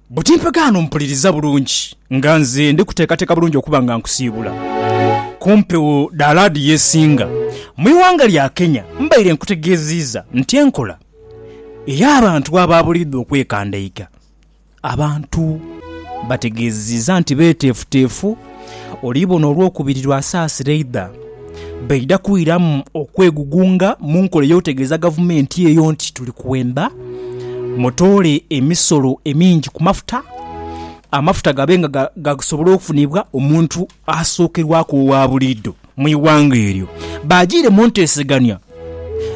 Buti mpeke ghano mpuliriza bulungi nga nze ndi kuteekateeka bulungi okuba nga nkusiibula ku mpewo dha laadiyo esinga mu ighanga lya Kenya. Mbaire nkutegeeziiza nti enkola ey'abantu abaabuliidwa okwekandaiga abantu bategeeziiza nti beeteefuteefu. Olibona olwokubiri lw'asaasira eidha, baidha kwiramu okwegugunga mu nkola ey'okutegeeza gavumenti eyo nti tuli kwenda mutoole emisolo emingi ku mafuta, amafuta gabe nga gasobola okufunibwa omuntu asookerwaku owa buliidho. mu ighanga eryo baajiire mu nteesegania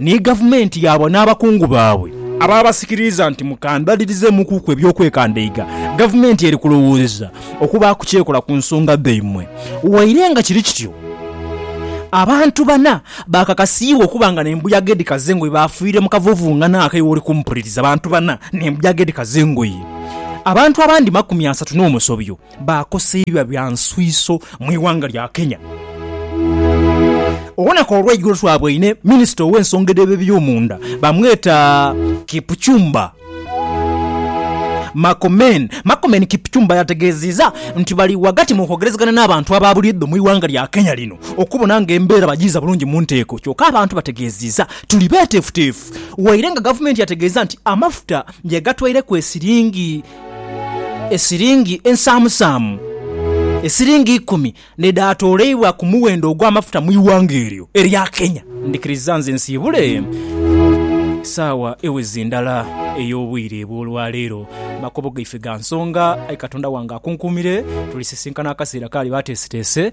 ni gavumenti yaabwe n'abakungu baabwe abaabasikiriza nti mukandhalirizaamukuku eby'okwekandaiga gavumenti eri kulowoozeza okubaaku ky'ekola ku nsonga dhaimwe. Waire nga kiri kityo, abantu bana baakakasiibwa okuba nga n'embuyaga edhikaza engoye baafiire mu kavuvungano ako ewoli kumpuliriza bantu bana n'embuyaga edhikaza engoye abantu abandi makumi asatu n'omusobyo. baakosa ebibya bya nswiiso mu ighanga lya Kenya. Olunaku olw'eigulo twaboine minisita ow'ensonga edh'ebyomunda bamweta Kipchumba Makomen. Makomen Kipchumba yategeeziza nti bali ghagati mu kwogerezegana n'abantu aba buliidho mu ighanga lya Kenya lino okubona nga embeera bagiiza bulungi mu nteeko kyoka abantu bategeeziza tuli beeteefuteefu waire nga gavumenti yategeeza nti amafuta yagatwaireku esiringi esiringi ensaamusaamu esiringi ikumi n'edhaatooleibwa ku muwendo ogw'amafuta mu ighanga eryo erya Kenya. Ndhikiriza nze nsiibule saawa eweze ndala ey'obwire bw'olwaleero. Makubo gaife ga nsonga, aye Katonda wange akunkuumire. Tulisisinkana akaseera k'aliba ateeseteese